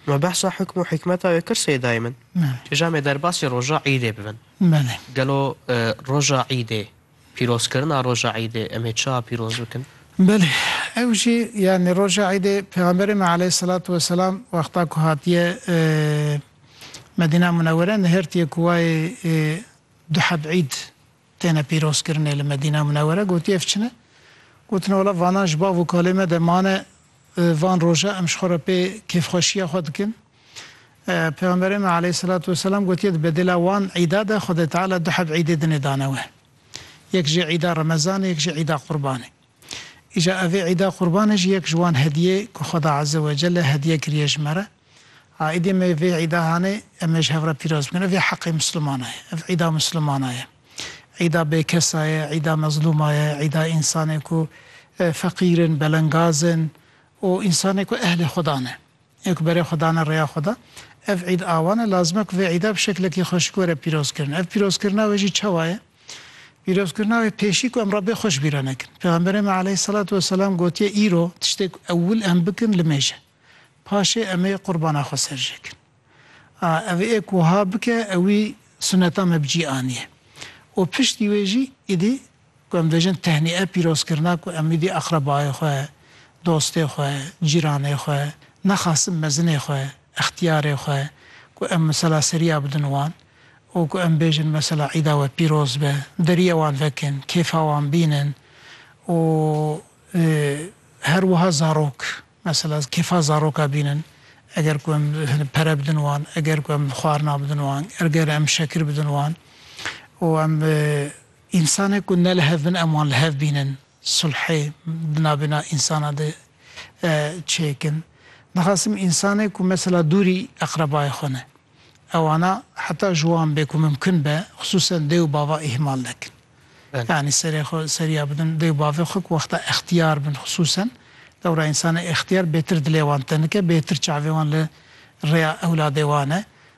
Me behsa hukm û hikmeta wê kir Sêdayê min. Îja me derbasî roja îdê bibin. Gelo roja îdê pîrozkirina roja îdê em ê çawa pîroz bikin? Belê ew jî yanî roja îdê Pêxemberê me aleyhîselatu weselam wexta ku hatiye Medîna Munewwere nihêrtiye ku wayê Duheb Îd têne pîrozkirinê li Medîna Munewere gotî ev çin e. Gotin wala vanan ji bav û kalê me de mane van roja em ji xwe re pê kêfxweşiya xwe dikin. Pêxemberê me aleyhîselatu weselam gotiye di bedêla wan îda de Xwedê Teala du heb îdê dinê dane we. Yek jî îda Remezanê yek jî îda Qurbanê. Îja ev ê îda qurbanê jî yek ji wan hediyê ku Xweda Eze Wecelle hediye kiriye ji me re. Aîdê me yê vê îda hanê em ê ji hev re pîroz bikin. Ev yê heqê Misilmana ye. Ev îda Misilmana ye. Îda bêkesa ye, îda mezlûma ye, îda însanê ku feqîr in, belengaz in û însanê ku ehlê Xweda ne. Ê ku berê xwe dane rêya xwe de. Ev îd a wan e, lazim e ku vê îda bi şeklekî xweşik were pîrozkirin. Ev pîrozkirina wê jî çawa ye? Pîrozkirina wê pêşî ku em Rabbê xwe ji bîr re nekin. Pêxemberê me aleyhîsselatu weselam gotiye îro tiştê ku ewil em bikin limêj e. Paşê em ê qurbana xwe serjêkin. A ev ê ku wiha bike ewî suneta me bi cî aniye. Û piştî wê jî îdî Ku em dibêjin tehnîe pîrozkirina ku em êdî aqrebayê xwe, dostê xwe, cîranê xwe, nexasim mezinê xwe, extiyarê xwe ku em mesela seriya bidin wan û ku em bêjin mesela îda we pîroz be, deriyê wan vekin, kêfa wan bînin û her wiha zarok mesela kêfa zaroka bînin eger ku em pere bidin wan, eger ku em xwarina bidin wan, eger em şekir bidin wan û em Însanên ku ne li hev bin em wan li hev bînin, sulhê di navbêna însanan de çêkin. Dixwazim însanên ku mesela dûrî eqrebayê xwe ne, ewana heta ji wan bê ku mimkin be xisûsen dê û bava îhmal nekin. Yanî serê xwe seriya bidin dê û bavê xwe ku wexta extiyar bin xisûsen, lewra însanê extiyar bêtir dilê wan tenike, bêtir çavê wan li rêya ewladê wan e.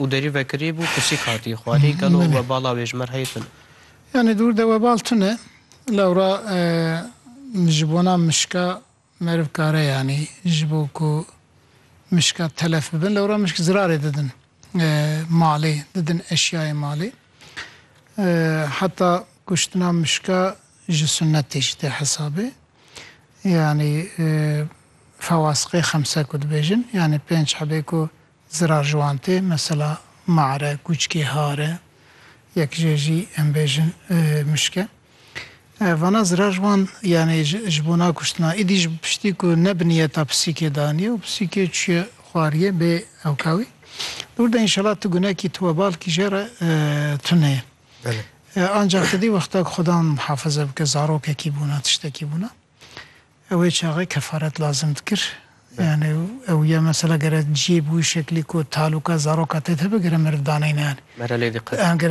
Û derî vekirî bû pisîk hatî xwarî gelo webala wê ji me re heyî tune. Yanî dûr de webal tune lewra ji bona mişka meriv kare yanî ji bo ku mişka telef bibin lewra mişk zirarê didin malê didin eşyayê malê heta kuştina mişka ji sunnetê jî tê hesabê yanî fewasiqê xemse ku dibêjin yanî pênc hebê ku Zirar ji wan tê, mesela mare, kûçkê, hare, yek jê jî em bêjin mişk e. Vana zirar ji wan yanê ji bo na kuştina, êdî ji piştî ku ne bi niyeta pisîkê daniye û pisîkê çûye xwariyê bê ewka wî. Li wir de înşela tu gunekî tu webal kî jê re tune ye. Ancak tu dî wexta ku xudan muhafaze bike zarokekî bûna, tiştekî bûna, Ew ê çaxê kefaret lazim dikir. Yanî ew ya mesela gere cî bû şeklî ku taloka zaroka tê de bigire meriv daneyne yanî. Mere lê diqe.